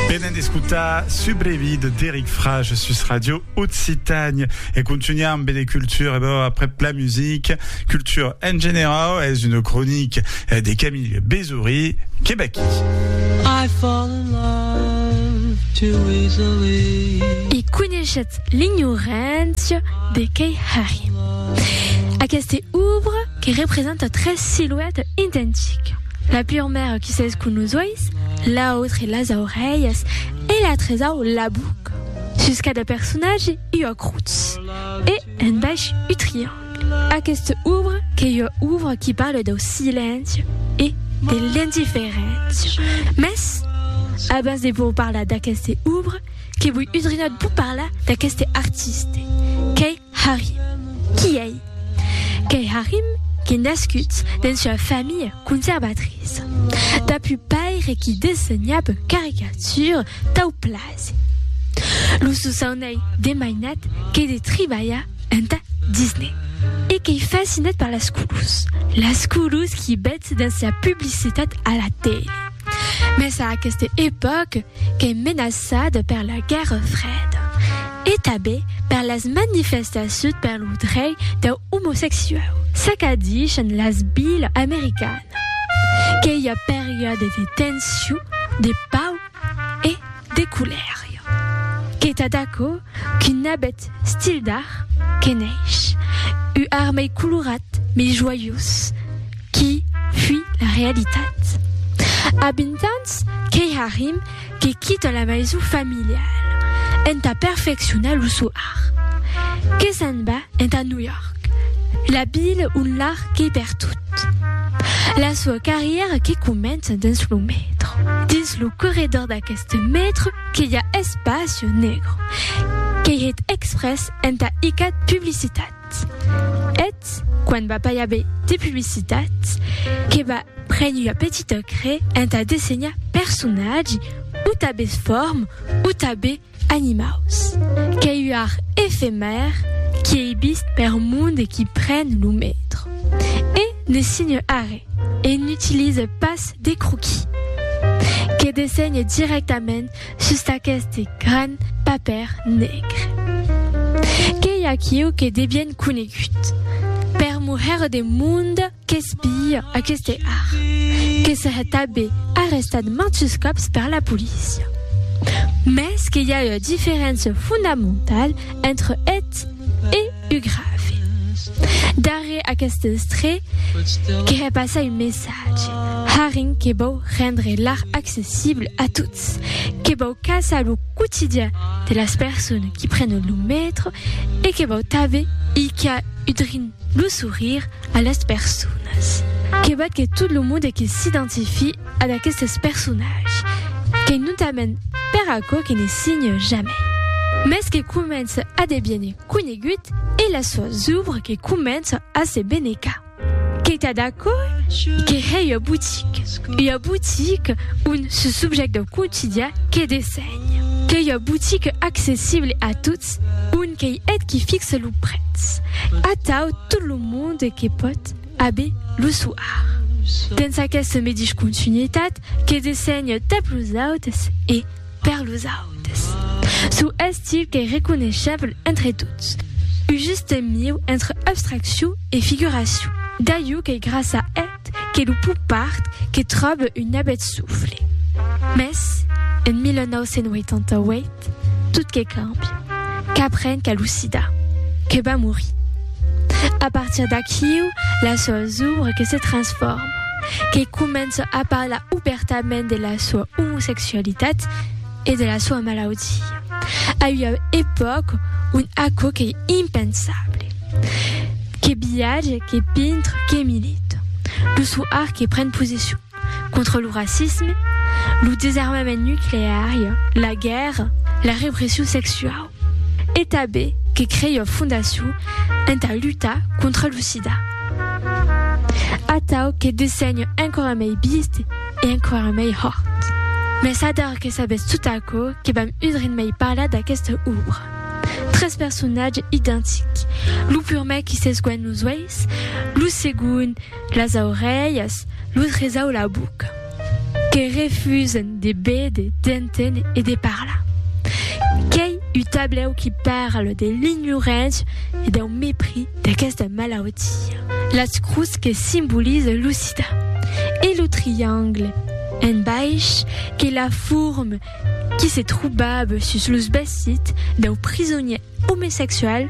Venen d'escotar Subrevi de Deric Frage sus Radio Occitània e contunhar amb de cultura e bò aprèp la music, cultura en generau es una cronica de Camille Bezory que vaquí. I fall in love too easily. E coneishetz l'ignorància de Kay Harry. Aquesta obra que representa tres siluetas identicas. La pur maire qui s'es con los uèis, l'autre las aurelhas e la tresau la boca. Sus cada personatge ua crotz e un bèsh u triangle. Aquesta obra qu'ei ua obra qui parle dau silenci e de l'indiferéncia. Mès, abans de vos parlar d'aqueste obra, que voi udrinat vos parlar d'aqueste artiste, qu'ei Harry. Qui ei? Qu'ei Harry qui nascut dens ua familha conservatriça. Dab un paire qui dessenhab caricatures tau plasi. Lo sosaun ei de mainat que de tribalhar enta Disney. E qu'ei fascinat per las colors. Las colors qui betz dens la publicitat a la tele. Mès a aquesta epòca qu'es menaçada per la guèrra freda e tanben per las manifestacions per lo drech deu omosexuau. Çaqu'a dichan las vilas americanas que i a periòdes de tension, de pau e de colèria. Que tà d'aquò qu'un abet stil d'art que neish, u armei colorat, mei joiós, Qui fuit la realitat? A 20 ans, qu'ei Harim que quita la maison familiale entà perfeccionar lo sò art. Que se'n va entà New York, la ville ont l'art qu'ei pertot. La soa carrièra que comença dins lo metro. Dins lo corredor d'aqueste metro que i a Espacio Negro, qu'ei hèt exprès entà icat publicitat. publicitat. Eth quan va pas i aver de publicitat que va prene ua petita crè entà dessenhar personatgi o tabes form o tabe animaus. Qu'ei ua art efemèr qui ei vist per monde qui pren lo metro e ne signe arrè e n'utilise pas de croquis. Que dessenhe directament Sus d'aqueste gran papèr negre. Qu'ei aquiu que de bien conegut. Per moher de monde qu'espia aqueste art, que se hè tabé arrestat mantus còps per la polícia. Mès que i a ua diferéncia fondamentala entre eth e u grave. Darrèr aqueste estré que hè passar un messatge, harren que vòu rendre l'art accessible a tots. Ets que vau caçar lo quotidian de las personas qui prenen lo metro e que vau tanbe hilhar udrin lo sourire a las personas. Que vat que tot lo monde que s'identifie ad aquestes personatges, qu'ei notament per aquò que ne signe jamai, mès que comença a deviene conegut e las soas ouvres que començan a se benecar. Qu'ei tad aquò que hè ua botique, ua botique on se subjèct dau quotidian que dessenhe. Qu'ei ua botique accessible a tots, on qu'ei eth qui fixe lo prètz, atau tot lo monde que pòt a be lo soar. Dens aqueste medish continuitat que dessenhe tap los autes e, Per los autes, çò estil qu'ei reconeishable entre tots, un juste mieu entre abstraccion e figuracion, d'aiu qu'ei grasa eth que lo pop art que tròbe un abet sofle. Mès, en 1988, tot que càmbia, qu'apren qu'a lo sida, que va morir. A partir d'aquiu, las sòus obres que se transforman. que comença a parlar obèrtament de la soa omosexualitat e de la soa malaudia, a ua epòca ont aquò qu'ei impensable. Que viatge, que pintre, que milita. Lo sò art que pren posession contra lo racisme, lo desarmament nucleari, la guèrra, la repression sexuau. e tanben que crei ua fondacion entà lutar contra lo sida. Atau que dessenho enquara mei bist e enquara mei hòrt. Mès ador que sabètz tot aquò que vam udrin mei parlar d'aquesta òbra. Tres personatges identics, lo purmèr qui s'esguènh los uèis, lo segond las aurelhas, lo tresau la boca. Que refusen de béder, d'entén e de parlar. Qu'ei un tablèu qui parle de l'ignorància e dau mepris d'aquesta malautia. Las crus que simbolize lo sida e lo triangle en baish qu'ei la forme qui se trobava sus los vestits dau prisonier omesexual